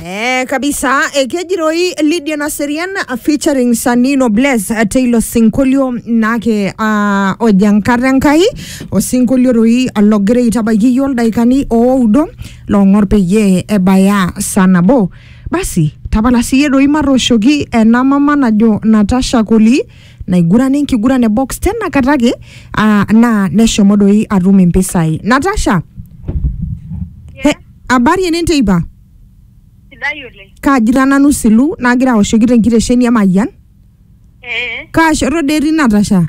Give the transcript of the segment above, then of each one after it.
Eh, kabisa eh, kejiroi Lydia Naserian ah, featuring Sanino Bless ah, teilo sinkolio nake ah, ojo enkata Enkai osinkolio toi logira aitabaiki iyiook ildaikani ooudo loong'or peyie ebaya saa nabo basi tapala siyie doi matooshoki ena mama najo Natasha Koli naigurana enkiguran e box tena kata ake ah, naa neshomo doi atum impisai Natasha He, Habari ene nteipa. Sidai oleng. Kaajita nanu silu nagira aoshoki tenkitesheni e Mayian. Ee. Kaa shoto dee etii Natasha?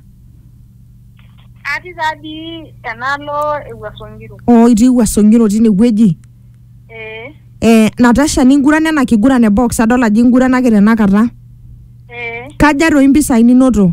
Atii taa dii enaalo e Wuaso Ngiro. Oo itii Wuaso Ngiro tine wueji. Ee. Eh, Natasha ningurana ena kiguran e box adol ajo inguranaki tenakata. Ee. Kaja toi impisai ninoto?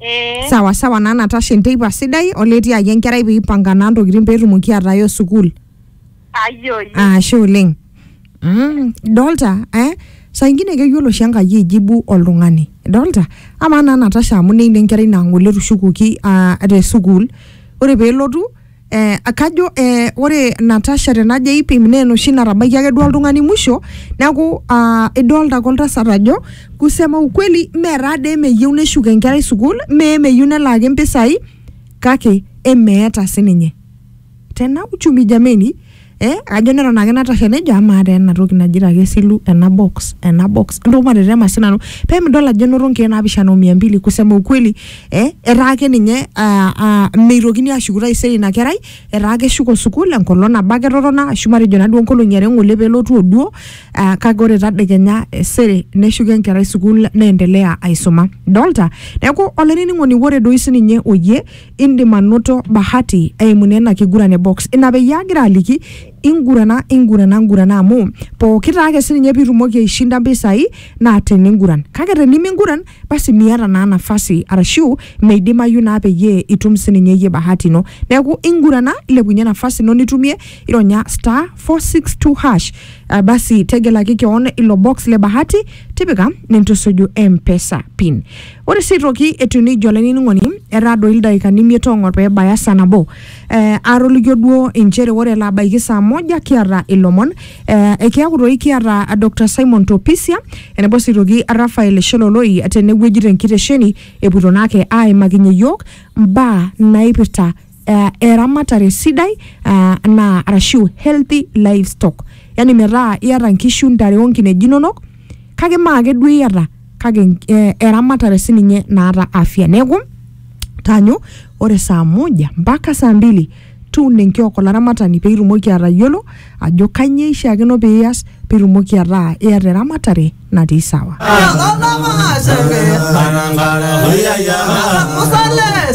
Eh, sawa sawa naa natasha enteipa sidai oletii ake enkerai peipanga naa ntokitin peetumoki ataayo sukuul ayoyi. ashe oleng mm, dolta eh? saa ingine keyiolo oshi enkai aijibu oltung'ani dolta amaa naa natasha amu neini enkerai naa ng'ole etushukuoki ah, te sukuul ore peelotu Eh, kajo eh, ore Natasha tenajo aipim naa enoshi natabaiki ake duo oltung'ani musho neeku ah, idolta ake oltasat ajo kusema ukweli mee taa dee meyieu neshuk enkerai sukuul mee meyieu nelaaki mpisai kake emeeta sininye tena uchumi jameni eh ajo neton ake natashe nejo amaa taa ena toki naji ake silu ena box ena box entoki matetema sinanu pemidol ajo enoto nkeek naapishana o mia mbili kusema ukweli eh etaa ake ninye ah, ah, meitokini ashuku taisere ina kerai etaa keshuko sukuul enkolong nabo ake etotona ashu matejo naduo nkolong'i are ng'ole pelotu oduo ah, kake ore tadekenya eh, sere neshuko enkerai sukuul neendelea aisuma dolta neeku olainining'oni ore doi sininye oyie Indim anoto bahati eimu naa ina kiguran e box. Ina peyie agira aliki ingurana, ingurana, ngurana amu pooki taa ake sininye piitumoki aishinda mpisai naa teninguran. Kake teniminguran basi miata naa nafasi arashu meidimayu naa peyie itum sininye iyie bahati ino. Neeku ingurana ilepunye nafasi ino nitumie, ironya star, four, six, two, hash aa basi tegelaki keon ilo box le bahati, tipika nintusuju mpesa pin. Ore sii aitoki etiu neijia olainining'oni, etaa doi ildaikani imiet o ong'or pee ebaya saa nabo. Eh, aatolikio duo inchere ore elo abaiki saa moja kiata ilomon eh, ekiaku doi kiata Dr Simon Topisia enebo sii aitoki Raphael Sheloloi tenewueji tenkitesheni epuoito naake aimakinye iyiook mbaa naipirta uh, eramatare sidai uh, naa arashu healthy livestock yani metaa iata nkishu ntare onkineji inonok kake maa ake duo iata kake nk- eh, eramatare sininye naata afya neeku tanyu ore saa moja mpaka saa mbili tun enkiok olaramatani pee itumoki atayiolo ajo kanyoo ishiakino pee ias pee itumoki ataa iata eramatare natii sawa Musa le